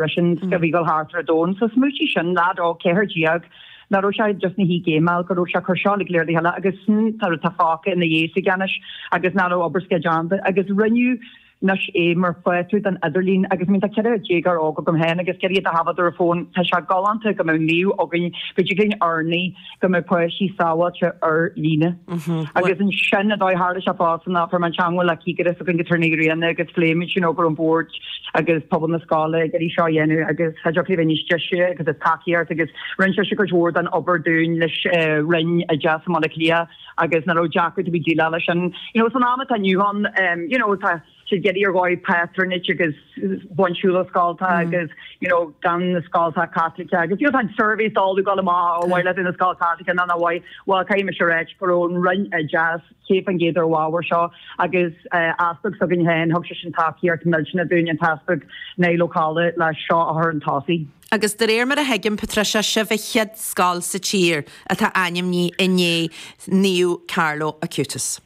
Briseann scigmhagadh thart ar domhan sa míorúiltí sin, leaid óg ceathair déag, nach raibh sé just ina shuí ag géimeáil, go raibh sé ag cur seo uilig go léir le chéile, agus sin an rud atá fágtha ina dhiaidh aige anois, agus an obair s'aige déanta. Agus rinneadh anois é mar phátrún don idirlíon. Agus I mean tá ceithre déagóir óg agam féin, agus ag iarraidh iad a thabhairt den fón, tá sé galánta go mbeadh naomh againn, go dtig linn urnaí go mbeidh páistí sábháilte ar líne. Agus ansin, an dóigh, tharla sé fosta ná go raibh mé i dteagmháil le cigire s'againn go Turnae Riona agus phléimid sin, go raibh an bord agus pobal na scoile ag iarraidh seo a dhéanamh agus cha dtiocfadh léi a bheith níos deise agus is tacaíocht agus rinne sise cuid mhór den obair dúinn leis an Roinn Oideachais i mBaile Átha Cliath agus ní raibh deacracht ar bith déileáil leis sin. You know, san am atá inniu ann, you know, tá. siad ag iarraidh ar dhóigh patronage a bhaint ar shiúl ó scoltacha agus you know gan na scoltacha Caitliceacha agus you know tá na surveys uilig ag gabháil amach ar mhaith leat í ina scoil Chaitliceach nó nár mhaith well caithfidh mise a rá go raibh an Roinn Oideachais céad faoin gcéad ar an ábhar seo agus easpag s'againn féin thug seisean tacaíocht millteanach dúinn an tEaspag Niall Ó Colla le seo a chur chun tosaigh. Agus de réir mar a thuigim Patricia sibh an chéad scoil sa tír atá ainmnithe i ndiaidh Naomh Carlo Acutis.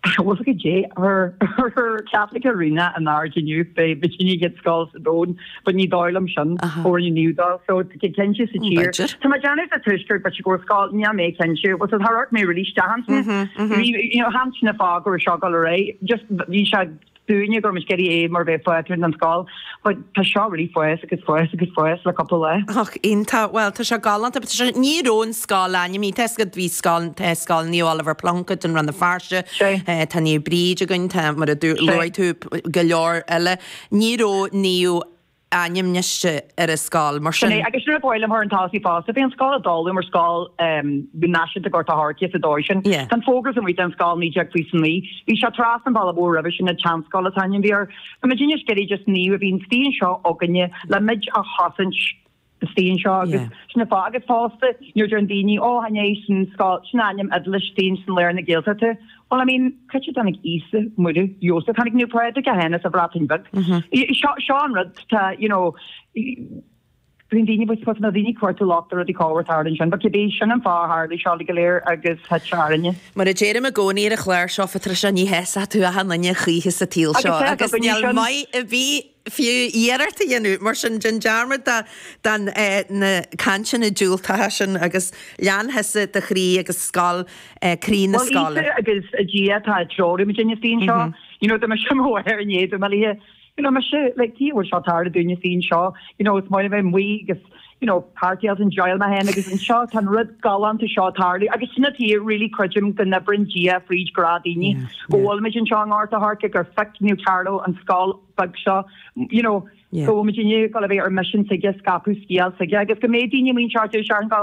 Bhuailfidh sé Irish Catholic a rinne a n-aird inniu b'fhéidir an chéad scoil sa domhan, but ní dóigh liom sin. Born in Newdale, so tá cinnte sa tír. Tá mé déanamh sa Tuaisceart but go raibh scoil, ní raibh mé cinnte, bhuel char amharc mé really isteach ansin, you know, chan é sin an fáth go raibh seo ag gabháil ar aghaidh, just bhí sé, dúinne go raibh muid ag iarraidh é mar phátrún ar an scoil. But tá seo really ag fás agus ag fás agus ag fás le cúpla lá. Och, iontach. Bhuel, tá sé galánta. Tá sé, ní raibh an scoil ainmnithe. Tá siad, bhí scoil, tá scoil Naomh Oliver Plunkett i Rann na Feirste. Sé. Tá Naomh Bríd againn, tá, mar a dúirt, luaigh tú go leor eile. Ní raibh Naomh ainmnithe ar an scoil, mar sin. Sin é, agus sin rud ab áil liom a chur chun tosaigh fosta, bhí an scoil ag dul mar Scoil Náisiúnta Ghort an Choirce sa dóigh sin. Tá an fógra sin amuigh ar an scoil 'naoi déag fiche is a naoi'. Bhí sé trasna an bhealaigh mhóir roimhe sin, an tSeanscoil an t-ainm a bhí air. Tá muid anois ag iarraidh just naomh a bheith istigh anseo againne le muid a chosaint. Istigh anseo agus sin an fáth agus fosta nuair a deireann daoine ó chan é sin ainm áitiúil istigh ansin i lár na Gaeltachta bhuel I mean cá háit a dtáinig Íosa, Muire, Iósaef, tháinig Naomh Pádraig a tháinig as an Bhreatain Bheag. Seo seo an rud tá you know bíonn daoine bhuel tá na daoine cuartú locht ar rudaí ag gabháil thart ansin but cibé sin an fáth a tharlaigh seo uilig go léir agus tá áthas orainne. Mar a deirim i gcónaí ar an chlár seo Patricia ní shásóidh tú achan duine choíche sa tsaol seo agus níl maith ar bith fiú iarracht a dhéanamh, mar sin, déan dearmad de na cainteanna diúltacha sin agus lean thusa do chroí agus scoil, croí na Bhuel, scoile. Íosa agus Dia atá ag treorú muid ar an saol seo, you know, tá mise i mo mháthair in éadan mo liath, you know, mise, like, cé a bhfuil seo ag tarlú dúinne sa saol seo, you know, is maith liom a bheith amuigh agus, you know, party I was enjoying mé fhéin agus anseo tá an rud galánta seo ag tarlú agus sin atí really creidim go n-oibreann Dia fríd grá daoine go bhfuilimid anseo i nGort a' Choirce gur phioc Naomh Carlo an scoil beag seo you know go bhfuilimid inniu ag dul a bheith ar mission s'aige scaipeadh scéal s'aige agus go mbeidh daoine amuigh anseo ar dtús searthain go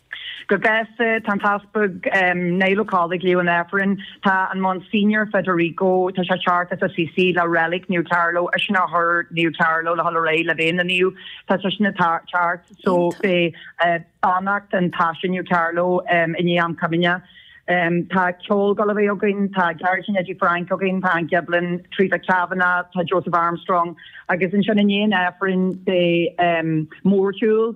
Go gasta, tá an tEaspag Niall Ó Colla ag léamh an Aifrinn, tá an Monsignor Federico, tá sé ag teacht as Assisi le relic Naomh Carlo, eisean a chuir Naomh Carlo le hola réidh le bheith ina naomh, tá seisean ag teacht, so beidh beannacht an taise Naomh Carlo i ndiaidh am comaoine. Tá ceol ag dul a bheith againn, tá Gearóidín Eddie Frank againn, tá an Ghiblin, Teresa Kavanagh, tá Joseph Armstrong, agus ansin i ndiaidh an Aifrinn beidh mórshiúl,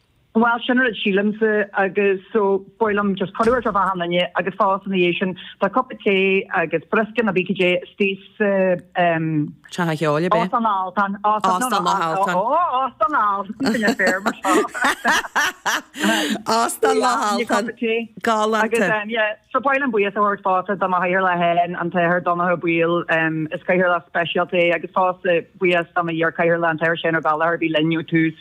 Bhuel, sin a raibh, sílimse, agus so, ba mhaith liom just cuireadh a thabhairt d'achan duine, agus fosta ina dhiaidh sin, tá cupa tae agus briosca nó bícudé istigh sa, em. Teach a' Cheoil, ar bith? Óstán Loch Altan. Óstán Loch Altan. Ó, Óstán Loch Altan, sin an fear, mar seo. Óstán Loch Altan. Galánta. Agus, em, yeah, so ba mhaith liom buíochas a thabhairt fosta do mo chathaoirleach fhéin, an tAthair Donncha Ó Baoill, em, is cathaoirleach speisialta é, agus fosta buíochas do mo iar-chathaoirleach, an tAthair Seán Ó Gallchóir, a bhí linn ó tús.